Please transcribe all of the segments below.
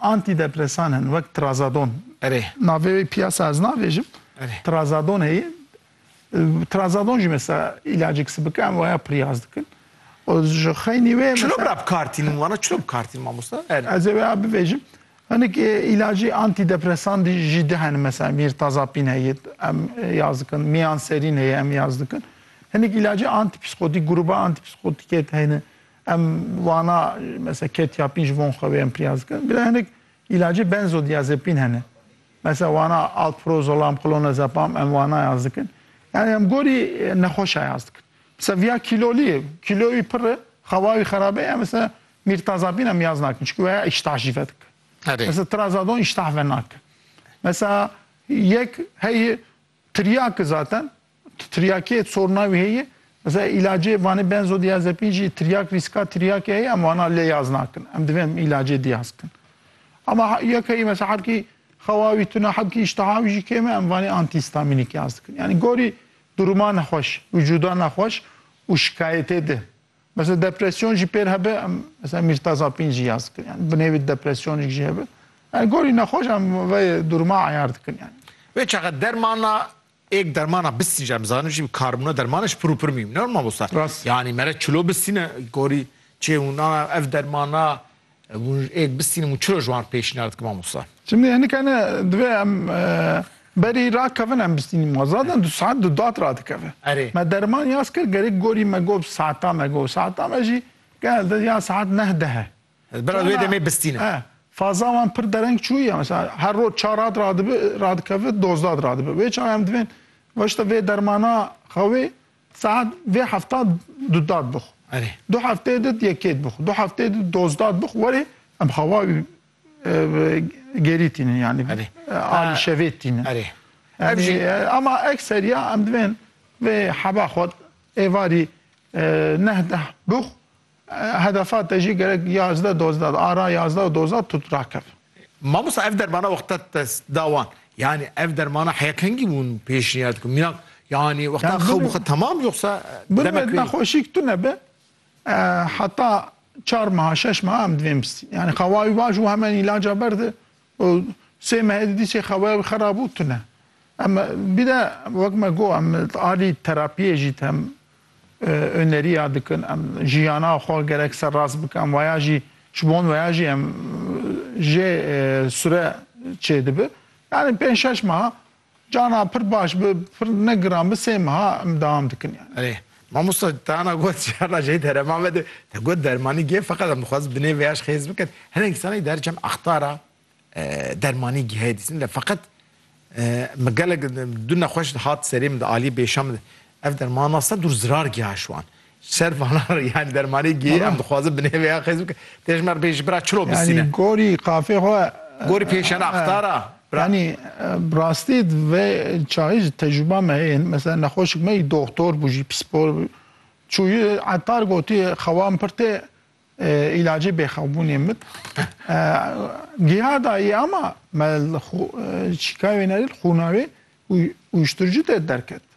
Antîdepresan hene wek trazadon. Erê. Navê wê piyasa ez navêjim. Erê. Trazadon heye. Trazadon jî mesela îlacek sibik em waya piryaz dikin. O ji xeynî wê Çilo bira bi kar tînin wana çilo bi kar tînin mamosta? Erê. Ez ê waya bivêjim. Hinek îlacî antîdepresan dî jî di hene mesela mîrtazapîn heye em yaz dikin, miyanserîn heye em yaz dikin. Hinek îlacê antîpsîkotîk, grûba antîpsîkotîkê de hene. Em wana mesela ketiapin ji von xwe wê em piriyaz dikin. Bila hinek îlacê benzodiazepin hene. Mesela wana alprozolam, klonazepam em wana yaz dikin. Yani em gorî nexweşa yaz dikin. Mesela viya kîlolî ye, kîloya wî pir e, xewa wî xerabe ye, em mesela mirtazapin em yaz nakin. Çunku weya îştah jî vedike. Mesela trazadon îştah venake. Mesela yek hey Tiryaki zaten tiryakiyê sorna wî heye. Mesela îlacê vanê benzodiazepin jî tiryak rîska tiryakê heye em wana lê yaz nakin. Em divê em îlacê diyaz bikin. Ama yekeyî mesela hebkî xewa wî tune hebkî îştiha wî jî kêm e em vanê antîhîstamînîk yaz dikin. Yanî gorî duruma nexweş, wicûda nexweş û şikayetê di. Mesela depresyon jî pêr hebe em mesela mîrtazapîn jî yaz dikin yani bi nêvî depresyonîk jî hebe. Yani gorî nexweş em vê duruma eyar dikin yani. Ve çaxa dermana êk dermana bistîn jî em zanin jî karbûna dermana ji pir û pir mîm ne mamosta. Rast. Yani mere çilo bistîne gorî çê hûna ev dermana Ez hûn ê bistînim û çiroj wan pêşniyar dikim mamosta. Şimdi hinika ne divê em berî rakevin em bistînim wan. Zaten du saet du dat radikeve. Erê. Me derman yaz kir gerek gorî me got saeta me got saeta me jî gel de ya saet neh deh e. Ez bira wê demê bistînim. He. Faza wan pir dereng çûye mesela her roj çar dat radibi radikeve dozdat radibi. Wê çawa em divên weşta vê dermana xewê Saet vê hefta du dat bixw. Erê. Du hefteyê dit yekêt bixw. Du hefteyê dit dozdat bixw. Werê em xewa gerî tînin yanî alî şevê tînin. Erê. Ev jî ema ekseriya em divên vê heba xwe êvarî neh deh bixw Hedefa te jî gerek yazdeh dozda di ara yazdeh û dozda tut rakev. Mamosta ev dermana wexta te da wan yanî ev dermana heya kengî hûn pêşniyar dikin mînak yanî wexta xew bixe temam yoxsa demek wê. Nexweşîk tune be heta çar meha şeş meha em divê em bistîn yanî xewa wî baş û hemen îlaca berde û sê mehê di dîsê xeweya wî xera bû tune. Em bir de wek me got em alî terapiyê jî tem öneriya dikin, em jiyana xwe gerek serrast bikin, waya jî ji bon waya jî em jê sure çêdibi. Yanî pênc şeş meha Cana pir baş bi pir ne giran bi sê meha em dewam dikin yani. Erê mamosta tana got şerna jey derema me de te got dermanî giye feqet em dixwazin bi nê vêyaş xêz bikin. Hinek îsanê di her çem axtara dermanî gihayê dîtin le feqet min gelek du nexweş hat serê min de aliyê bêşa min de ev dermana sed dûr zirar giha ji wan. Ser vana yani dermanê gêyê em dixwazin bi nêveya xêz bike. Tê ji me re bê ji bira çiro bisîne. Yanî gorî qafê xwe Gorî pêşena qitara. Yanî bi rastî di vê çayê ji tecrûba me yên mesela nexweşik me yî doxtor bû jî psîkolog bû çûyî etar gotiye xewa min pir tê îlacê bêxewbûnê min giha dayî ama me li çîkayê wê ne li xûna wê uyuşturucu tê derket.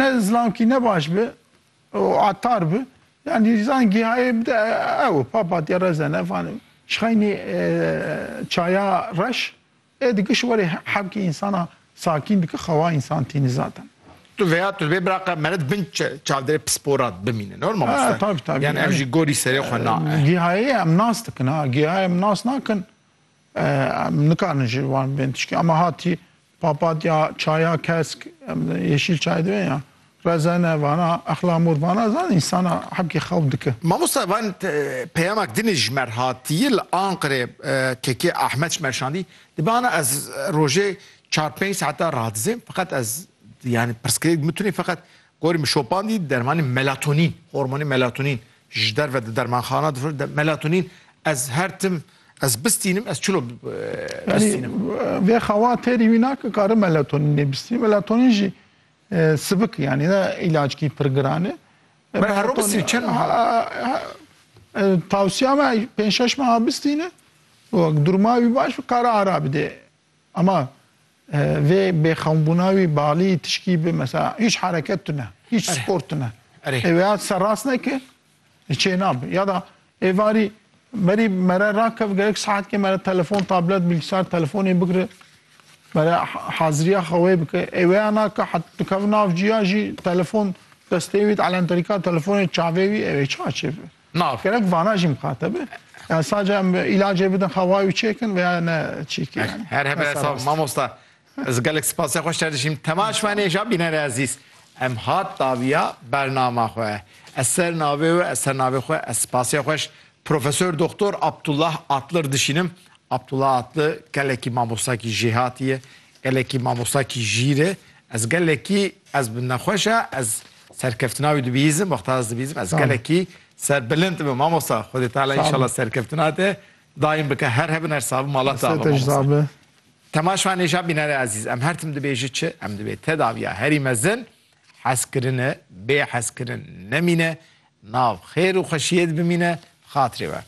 Ne zlankî ne baş bi û atar bi. Yanî zan gîhayê bide ew û papatîya reze ne van şixeynî çaya reş ê dikiş werî hevkî însana sakîn dike xewa însan tîni zaten. Tu veya tu dibê biraqa meret bin çavdêrê pispora bimîne no mamoste? Tabî tabî. Yanî ev jî gorî serê xwe na e. Gîhayê em nas dikin ha gîhayê em nas nakin em nikarin ji wan bên tişkî ama hatî Papatya çaya kesk yeşîl çay dibe ya rezene vana exla mor vana zan insana hebkê xew dike. Mamosta van peyamak dinê ji merhatiyê li Anqirê KK Ahmet ji merşandî dibe ana ez rojê çar pênc saeta radizêm feqet ez yani pirsgirêk dime tunê feqet Gorî min şopandî dermanê melatonîn, hormonê melatonîn ji derve di dermanxana difroşin. Melatonîn ez her tim ez bistînim, ez çilo bistînim? Vê xewa têrî wî nake karim melatonînê bistînim. Melatonîn jî sibik e yanî ne îlacikî pir giran e. Ber herro bistînî çend meha? Tewsiya me pênc şeş meha bistîne. Durma wî baş be kare ara bide. Ama vê bêxewnbûna wî bi alî tişkî bi mesela hîç hereket tune, hîç spor tune. Ê wêya serrast neke li çê nabe. Ya da êvarî berî me re rakev gerek saetkê me re telefon, tablet, bilgisayar, telefonê bigire me re haziriya xwe wê bike. Ê wêya nake heta dikeve nav cîya jî telefon destê wî di elenterîka telefonê çavê wî ê wê çi açê bibe. Nav. Gerek vana jî mixate be. Yani sadece em ilacê bidin xewayê û çêkin veya ne çîkî yani. Her hebe hesab mamosta. Ez gelek spasê xweş te dişîm. Temaş me nêja bînerê ezîz. Em hat daviya bernama xwe. Ez ser navê we, ez ser navê xwe, ez spasê xweş Profesör Doktor Abdullah Atlı dişînim. Abdullah Atlı gelekî mamostakî jêhatî ye, gelekî mamostakî jîr e. Ez gelekî ez bi nexweş e, ez Serkeftina wî dibîzim, Muxtar dibîzim. Ez gelekî ser bilind dibim mamosta. Xwedê Teala înşallah serkeftina te daîm bike. Her hebin her sabi mala te ava mamosta. Temaş van êja bînerê ezîz. Em her tim dibêji çi? Em dibê te daviya herî mezin heskirine, bê heskirin nemîne, nav xêr û xweşiyê di bimîne, bi xatirê we.